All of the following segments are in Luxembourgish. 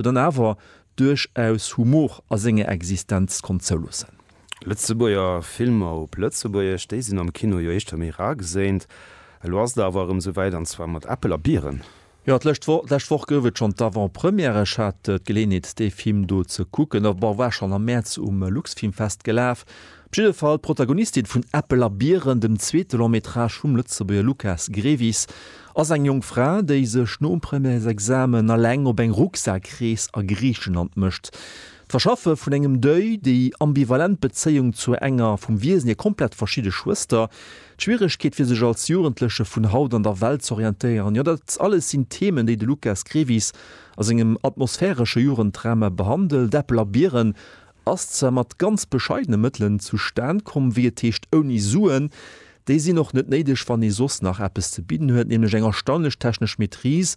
mee dann awer duerchaus Humor a senger Existenz konnt zouloossen. Lëtzebuerger Filmer op Lëtzebuergesch, déi sinn am Kino jo éischter méi rar geséint. Elo ass et awer erëm esou wäit, an zwar mat Äppel a Bieren. Jo, d'lescht Woch, d'lescht Woch gouf et schonn d'Avant-Première. Ech hat d'Geleeënheet, dee Film do ze kucken, a war schonn am Mäerz um Luxfilmfest gelaf. Op jidde Fall, d'Protagonistin vun Äppel a Biren, dem zweete Long Métrage vum Lëtzebuerger Lukas Grevis, ass eng jonk Fra, déi sech nom Premièresexamen eleng op eng Rucksak-Rees a Griichenland mécht. D'Verschaffe vun engem Deuil, déi ambivalent Bezéiung zur enger vum Wiesen hir komplett verschidde Schwëster, d'Schwieregkeet fir sech als Jugendleche vun haut an der Welt z'orientéieren, jo dat alles sinn Themen, déi de Lukas Grevis a sengem atmosphäresche Jugenddrama behandelt. Äppel a Biren ass zwar mat ganz bescheidene Mëttelen zustan komm, wéi et heescht ouni Suen. Déi sinn och net néideg, wann ee soss nach eppes ze bidden huet, nämlech eng erstaunlech technesch Maîtrise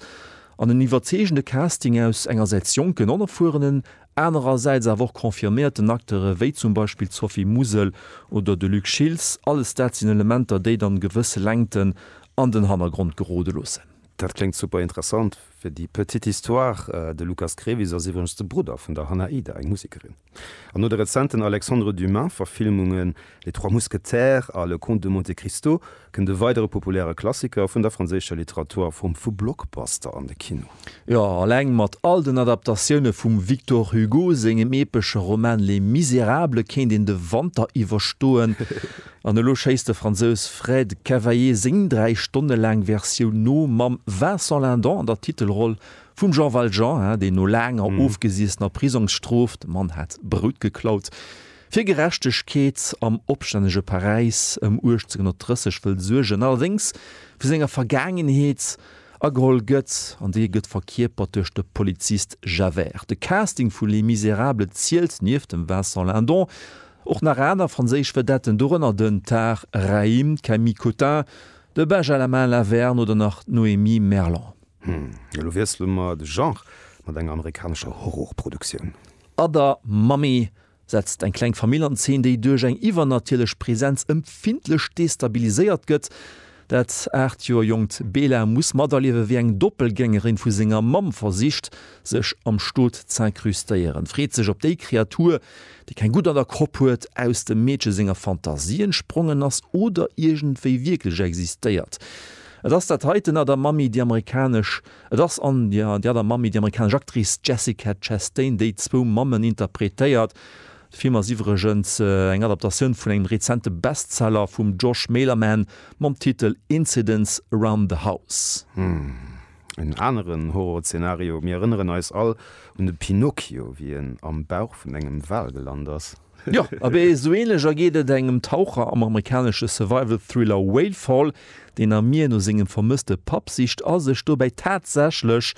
an en iwwerzeegende Casting aus engersäits jonken Onerfuerenen, anerersäits awer och confirméierten Acteure wéi zum Beispill d'Sophie Mousel oder de Luc Schiltz. Alles dat sinn Elementer, déi dann gewësse Längten an den Hannergrond gerode loossen. Dat kléngt super interessant. Fir déi petite histoire, de Lukas Krevis ass iwwregens de Brudder vun der Hannah Ida, eng Musekerin. An no de rezenten Alexandre Dumas Verfilmungen Les Trois Mousquetaires a Le Comte de Monte Cristo kënnt e weidere populäre Klassiker vun der franséischer Literatur a Form vu Blockbuster an de Kino. Jo, alleng mat all den Adaptatioune vum Victor Hugo sengem epesche Roman Les Misérables kéint een de Wanter iwwerstoen. An elo schéisst de Fransous Fred Cavaillé séng 3 Stonne laang Versioun no, mam Vincent Lindon an der Titelroll, vum Jean Valjean, deen no laanger ofgesiessener Prisongsstrof, de Mann hat Brout geklaut, fir Gerechtegkeet am opstännege Paräis ëm 1830 wëll suergen, allerdéngs vu senger Vergaangenheet ageholl gëtt, an déi gëtt verkierpert duerch de Polizist Javert. De Casting vu Les Misérables zielt, nieft dem Vincent Lindon, Och nach aner franséisch Vedetten, dorënner den Tahar Rahim, d'Camille Cottin, de Bajalamin Laverne oder nach d'Noémie Merlan. Hm, elo wiessele mer de Genre mat enger amerikanescher Horrorproduktioun. Other Mommy setzt eng kleng Famill an Zeen, déi duerch eng iwwernatierlech Presenz empfindlech destabiliséiert gëtt. Dat 8 Joer jonkt Bela muss materliewen, wéi eng Doppelgängerin vu senger Mamm versicht, sech am Stot z'incrustéieren. Freet sech op déi Kreatur, déi keng Gutt an der Kropp huet, aus dem Meedche senger Fantasie entsprongen ass oder iergendwéi wierklech existéiert. Et ass dat heiten a der Mammi déi amerikanesch Et ass an der Mammi déi amerikanesch Actrice Jessica Chastain, déi zwou Mammen interpretéiert. De Film ass iwwregens eng Adaptatioun vun engem rezente Bestseller vum Josh Malerman mam Titel Incidents Around the House. Humm, en aneren Horrorzeenario. Mir erënneren eis all un de Pinocchio, wéi en am Bauch vun engem Wal gelant ass. Jo, abee esou änlech ergeet et engem Taucher am amerikanesche Survival-Thriller Whale Fall, deen am Mier no sengem vermësste Papp sicht a sech dobäi tatsächlech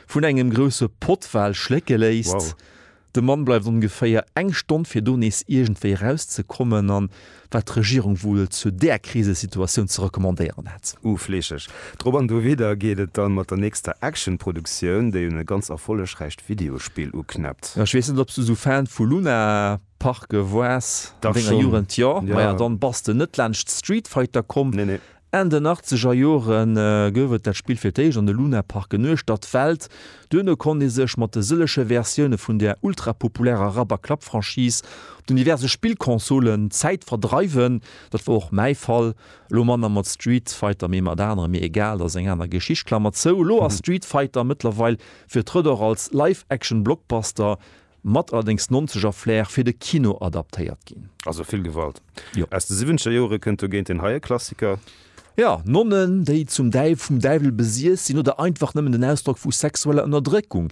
vun engem grousse Pottwal schlécke léisst. Wow. De Mann bleift ongeféier eng Stonn, fir do nees iergendwéi eraus ze kommen, an wat d'Regierung wuel zu där Krisesituatioun ze recommandéieren hätt. Uh, fleescheg. Drop an dowidder geet et dann mat der nächster Action-Produktioun, déi un e ganz erfollegräicht Videospill uknäppt. Ech weess net, ob s du esou Fan vu Luna Parke woars an denger Jugend. Jo? Maja, dann bass de net laanscht Street Fighter komm. Nee, nee. Enn den achtzeger Jore gouf et dat Spill fir d'éischt an de Lunaparken uechtert d'Welt. Duerno konnt ee sech mat de sëlleche Versioune vun der ultrapopulärer Rapp-a-Klapp-Franchise op den diverse Spillconsolen d'Zäit verdreiwen. Dat war och mäi Fall. Elo manner mat Street Fighter, mee mat anere mir egal, dat ass eng aner Geschicht. Klammer zou, Elo ass Street Fighter mëttlerweil virtrëtt och als Live-Action-Blockbuster Mat allerdéngs nonzeger Flair fir de Kino adaptéiert ginn. Also vill Gewalt. Jo. Aus de siwwenzeger Jore kënnt dogéint deen heie Klassiker. Jo, Nonnen, déi zum Däiw, vum Däiwel besiess sinn oder einfach nëmmen en Ausdrock vu sexueller Ënnerdréckung.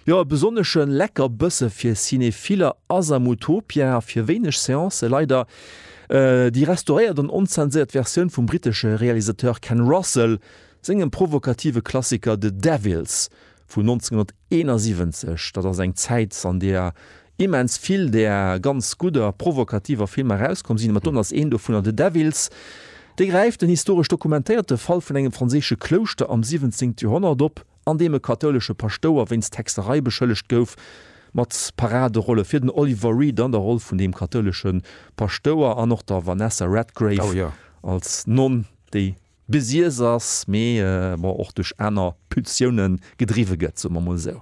Jo, e besonnesche Leckerbësse fir Cinephiller ass am Utopia fir wéineg Seancë leider déi restauréiert an onzenséiert Versioun vum brittesche Realisateur Ken Russell sengem provokative Klassiker The Devils Vun 1971, dat ass eng Zäit, an där immens vill där ganz gudder, provokativer Filmer erauskomm sinn, mat dono ass een dovunner The Devils. Dee gräift en historesch dokumentéierte Fall vun engem franséische Klouschter am siwwenzéngt Joerhonnert op, an deem e kathoulesche Paschtouer wéinst Hexerei beschëllegt gouf, mat Paraderolle fir den Oliver Reed an der Roll vun deem kathoulesche Paschtouer an och der Vanessa Redgrave als Nonn, déi. besiess ass, mee bon och duerch aner Pulsioune gedriwwe gëtt, soe mer mol esou.